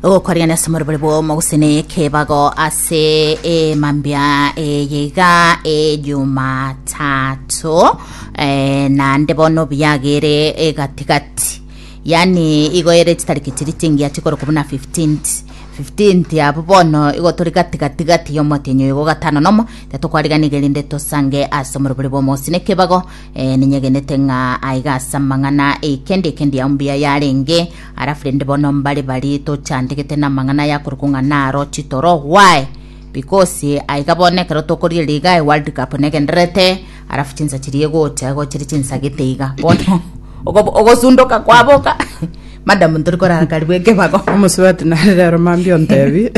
ogokwarigana ase omorobori bw'omo gose na ekebago ase emambia eye iga ejumatato eh, naende bono obiagere egatigati yaani igo ere chitariki chiri chingiya chikoro kobuna 15th 15th abo bono igo tori gatigatigati y'omotenyi oyo gogatano nomo tatokwariganige rinde tosange ase omorobori bw'omo gose na ekebago Ee, ninyegenete ng'a aiga ase amang'ana eikendi ekendi yao mbuya yarenge, arafu rende bono mbare barie tochandegete n'amang'ana aya korwa kong'ana aro chitoro gwae bikosi aiga bono ekero tokoriria liga e world cup negendererete arafu chinsa chiria egocha igo chiri chinsagete iga bono ogo- ogosundoka kwaboka madam ntori korara karibu ekebago Omosubati nare rero mambia ontebi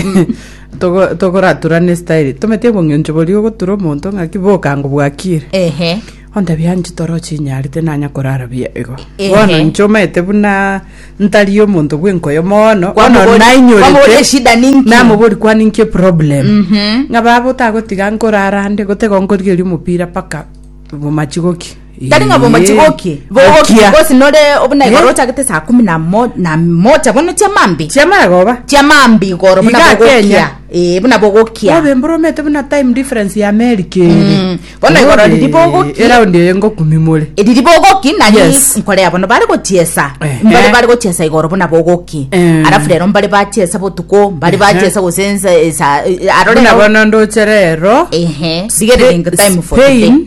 Togo togoratura ne style. Tomete obong'encho boria ogotura omonto ng'aki boka ngo bwakire. Ehe. Ontabia anche toro chinyarete nanya korara buya igo. Ehe. Bono inche omanyete buna ntari omonto bw'enkoyo mono. Bono Kwamobori- nainyorete- kwamobori eshida ninki? Namobori kwa ninki eproblem. Mhm. Ng'a baba otagotiga nkorara ande gotego nkorigeria omopira paka bomachigoki. Tari ng'a bomochi goki bogokia gose nore obuna igoro ochagete saa kumi na mo- na mocha bono chiamambi chiamara goba chiamambi igoro buna Iga bogokia Kenya. ee buna bogokia obe mboromete buna time difference ya america ere Mm. Bono igoro Obe, riri bogokia. eraundi eye ngokumimore eriri bogoki nari Yes. nkorea bono bari gochiesa Ehe. mbari bari gochiesa igoro buna bogoki Eh. arafu rero mbari bachiesa botuko mbari Ehe. bachiesa gosensa esa arore buna bono ndochere ero ehe sigerere ngo time for today Spain,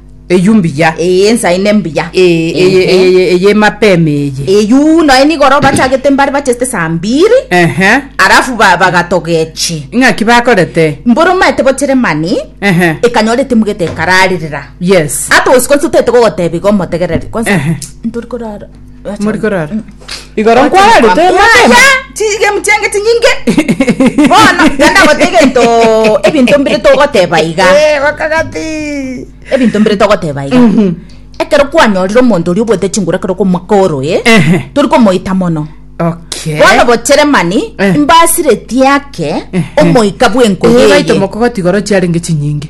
Eyio mbuya. Ee, ensa eye nembuya. Ee, eye, Ehe. eye, eye, eye mapema eye. Eyio noe nigo oro bachagete mbare bacheste saa mbiri Ehe. arafu ba- bagatogechi Ng'aki bakorete. mboro maete bochere mani Ehe. ekanyora etimugete ekararerera Yes. ata osiko nse otete gogotebiga omotegereri kwansa Ehe. ntori korara Muri korara. Igoro nkwararete mapema. chigemchengeti nyinge bono genda gote egento ebinto mbire togoteba iga Eh, bakagati. ebinto mbire togoteba iga ekero kwanyorire omonto oria obwete chinguru ekero komwaka oro e Ehe. tori komoita mono Okay. bono bochere mani Eh. mbasireti ake Eh, eh. omoika bwenko Eh, baito yeye mokogoti igoro chiarenge chinyinge.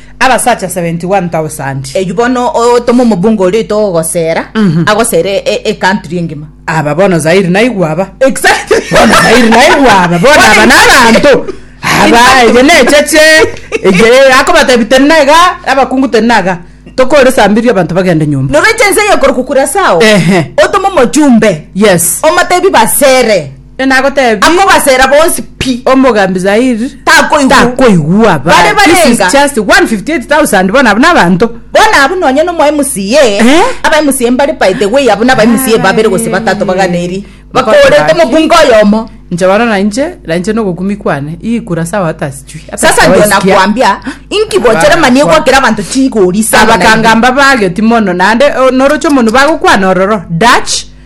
abasacha seventy one tausandi. Eyio bono otome omobunga oria oito gogosera, agosere e- ecountry engima. Aba bono Zaire naigwe aba. Exactly. Bono Zaire naigwe aba, bono aba nabanto. Aba eye necheche, eye akobatebi teri naiga, abakungu teri naiga. Tokore saa mbiri abanto bagende nyomba. Noroche ense eyo ekorokwa Curaçao, Ehe. otome omojumbe, Yes. omotebi basere. Nagotebi. Akobasera bonsi pi. Omogambi Zair. Takoigwa. Takoigwa. Bare barenga. This is just 158,000 bona abuna abanto. Bona abu nonye no mwa MCA. Eh? Aba MCA mbare by the way abu naba MCA ah, babere gose batato baganeri. Bakorete mobunga oyomo. Nche bana na nche, na nche no gokumi kwane. Ii kura sawa hata sijui. Sasa ndio nakwambia inki bochera manie kwa kila bantu chigori sana. Abakangamba bageti mono nande norocho mono bagokwana ororo. Dutch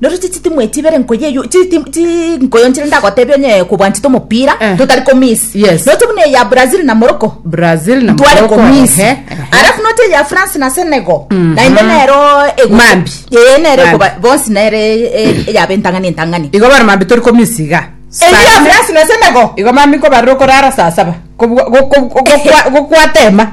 Nero chitimwe echi ibere nkoyo eyo chiti- chinkoyo nchire ndagotebia onye kobwanchete omopira Eh. totari komisi Yes. noche buna eya brazil na morocco brazil na tware Morocco, komisi ehe, ehe. alafu noche eya france na senegal naende nero ego- Mambi. Eh, nero Mambi. ekoba- bonsi nere eh, eyaba entang'ani entang'ani igo bare mambi tori komisi iga eya france na senegal igo mami nkobarire okorara saa saba Kobwa- go- go- go- gokwa- gokwatema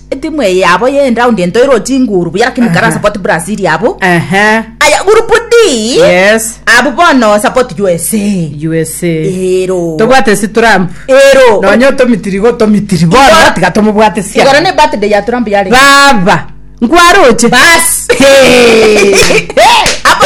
Etimu eye yabo ye round entoiro chinguru buya lakini kara support Brazil yabo. Ehe. Aya group D. Yes. Abu bono support USA. USA. Ero. Tobwate si Trump. Ero. Nonya otomitiri go tomitiri. Bono Igora- batiga tomobwate sia. Igora ne birthday ya Trump yale. Baba. Nkwaroche. Bas. Hey. Apo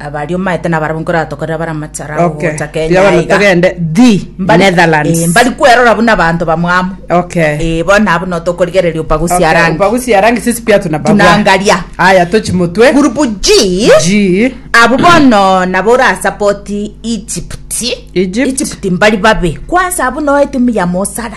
Abaria omaete nabarabwo nkore atokorera bare amachara abo Okay. gocha Kenya Tiga bono iga. togende the Mbari- eh, Netherlands. mbari kwerora buna abanto bamwamo Okay. Eh, bono abo notokorigereria opagusia Okay, rangi upagusia rangi sisi pia tunapagua. tunangaria Aya tochi mutwe. gurupu g G. abo bono nabo orasapoti egypt Egypt. egypt mbari babe kwansa abo noe timu ya mosara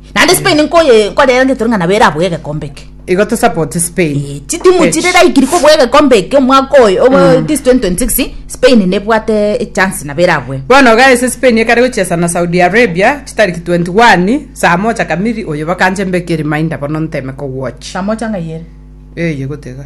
Naende Spain nkoye nkorera ngetoro ng'a nabo eraboe egekombe eke. Igo tosapote Spain. Eh, chitimu Ech. chire raikiri koboa egekombe eke omwaka oyo obo this 2026 Spain nebwate echance nabo eraboe. Bono iga ase Spain ekare gochesa na Saudi Arabia chitariki 21 saa mocha kamili oyo bakanche mbeke reminder bono nteme kowatch. Samocha ng'ai ere? Eye gotiga.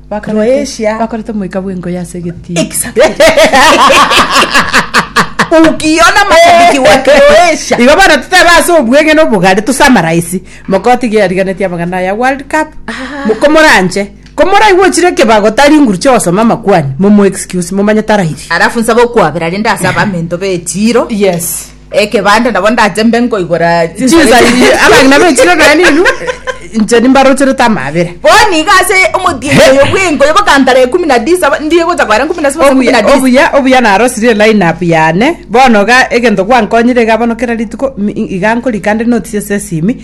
Croatia. bakorete omoika bw'engoya ase egetii Ukiona mashabiki wa Croatia. igo bono totebe ase obweng'ene obogare tosamaraisi mokoti iga yariganetie amang'ana aya world cup mokomoranche komoraigwe ochire ekebago tari nguru chia ogosoma amakwani momo excuse momanye tarairia Alafu nsabe okwabera rende ase abamento be echiro. yes Ekebande nabo ndache mbe nkoigora chinsa inche. Abang'ina bechire nonya ninwe, inche nimbarocherete amaabera. Bono iga ase omotienyi oyo bw'enko ya bakantara ekumi na tisa, ndie gocha koera nkumi na saba na Obuya, ekumi na tisa. obuya, obuya narosirie line up yane. Bono iga egento gwankonyire iga bono kera rituko, mi- iga nkorika nde notes ase esimi.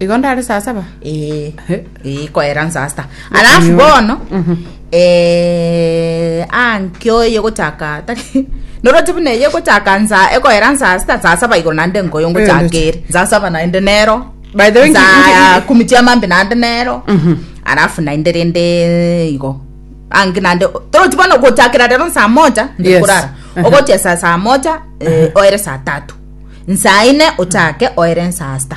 igo ndare saa saba Eh, He. eh, koera nsaa sita alafu bono eh, anki oye gochaka tari noroti buna eye gochaka nsa ekoera nsaa sita nsaa saba igoro naende nkoyo ngochakere nsaa saba naende nero By the way, nki- nsaa nki- kumi chiamambi naende nero Mhm. alafu naende rende igo anki naende toroti bono gochakera rero nsaa moja Yes. ndikurara Aha. ogochia saa saa moja eh, oere saa tatu nsaa ine ochake oere nsaa sita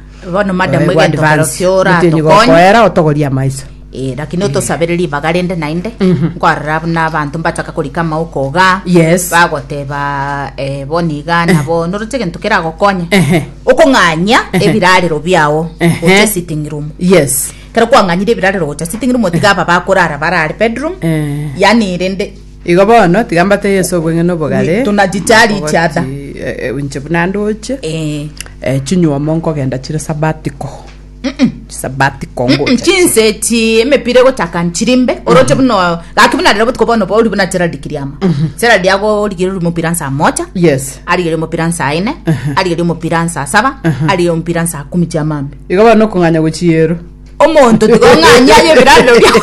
bono madam Bono egento advance. korosio ora Gotini atokonye gokoera otogoria amaiso Eh, lakini otosabere ribaga rende naende nkwarora buna abanto mbataka korika amauko iga Yes. bagoteba eh, bono iga nabo noroche egento keragokonye Ehe. okong'anya ebirarero biao Ehe. gocha sitting room yes kero kwang'anyire ebirarero gocha sitting room tiga aba bakorara barare bedroom Eh. yani rende Igo bono, tiga mbatebie Yeso obweng'ene obogare. Tonachicha richa da. Okogoti, inche buna ndoche. Ee. Chinyuomo nkogenda chire sabatiko. Chisabatiko ngocha. Chinse echi emepira egochaka nchiri mbe, oroche buna, gaki buna rero botuko bono bori buna Gerald Kiriama. Gerald agorigeria ori omopira nsaa mocha. Yes. Arigeria omopira nsaa ine, arigeria omopira nsaa saba, arigeria omopira nsaa kumi chiamambia. Igo bono okong'anya gochia ero. Omonto tiga ong'anyia aye ebirarero biao.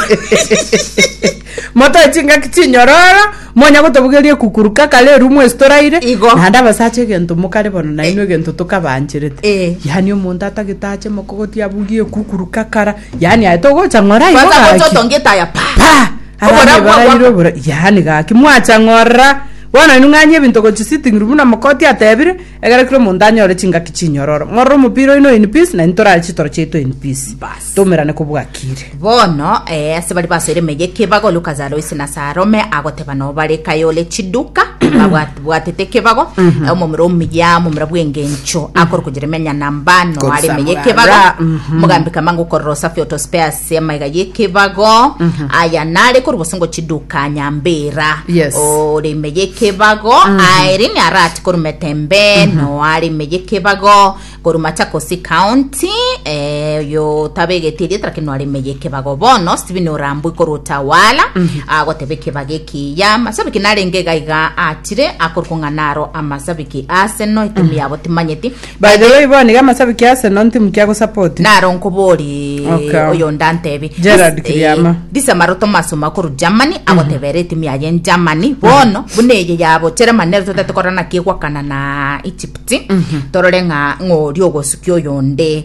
motoe chingaki chinyororo monya gotobugeria ekukuruka kare erumu ase toraire Igo. naende abasacha egento mokare bono nainwe egento tokabaancherete Eh. yaani omonto atagete ache mokogoti abugie ekukuruka kara yaani aye togocha ng'ora igo Kwanza gocha gaki otongete aya pa. pa Oborabu abana bwa ebaraire gwaka. obora yaani gaki mwacha ng'ora bono inwe ng'anyia ebinto gochi sitting room na mokoti atebire Ekero kera omonto anyore chingaki chinyororo, ng'orore omopira oino in peace, na intorare chitoro chiaito in peace. Bas. Toumerane kobwakire. Bono, eh, ase baria basoire emeyia ekebago, Lucas aroise na ase arome, agoteba nao bare kaye ore chiduka, babwat- bwatete ekebago, eh, omomura omuya, omomura bw'engencho, akorokwa Jeremia Nyanamba, noare Korusa emeyia ekebago, murara, mhm. mogambi kama ngokorora osafi oto spares ase amaiga y'ekebago aya nare korwa bosongo chiduka nyambera Yes. ore ime y'ekebago aere nyarati korwa metembe noare ime y'ekebago korwa machakosi county eh, oyo tabegete erieta lakini noare ime y'ekebago bono stephen orambwe korwa utawala agoteba ekebago ekiya masabiki narenge gaiga atire akorwa kong'ana aro amasabiki arsenal etimi yabo timanyeti By the way bono iga amasabi kia Arsenal ntimu kia gosapoti. Naro nkoborie Okay. oyonde antebe Gerard Dis- Kiriama. eh, disamaro Thomas Ouma korwa Germany agotebera etimu yaye en Germany bono buna eye yabo Germany nero totete korora naki egwakana na Egypt torore ng'a ng'ori ogosukia oyonde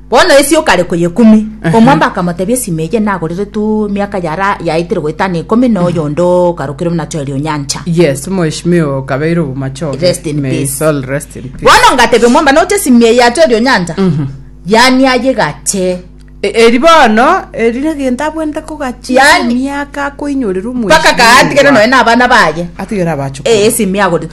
Bono esia okare koyekumi. Omwamba akamotebia, Esima eye nagoreretwe miaka yara yaetire goetana ikomi, na oyonde okarokirwe na Joeli o nyancha. Yes, omweshimiwa okabeire obomachoge. Rest in May his peace. soul rest in peace. Bono ngatebia omwamba, noche esimi eye ya Joeli o nyancha? Yaani aye gache. E- Eri bono eri negento abwenerete kogachi Yaani- miaka akoinyorerwa omweshimiwa. Mpaka katigere noe na abana baye. Atigere abachukuru. Eh, esimi agore.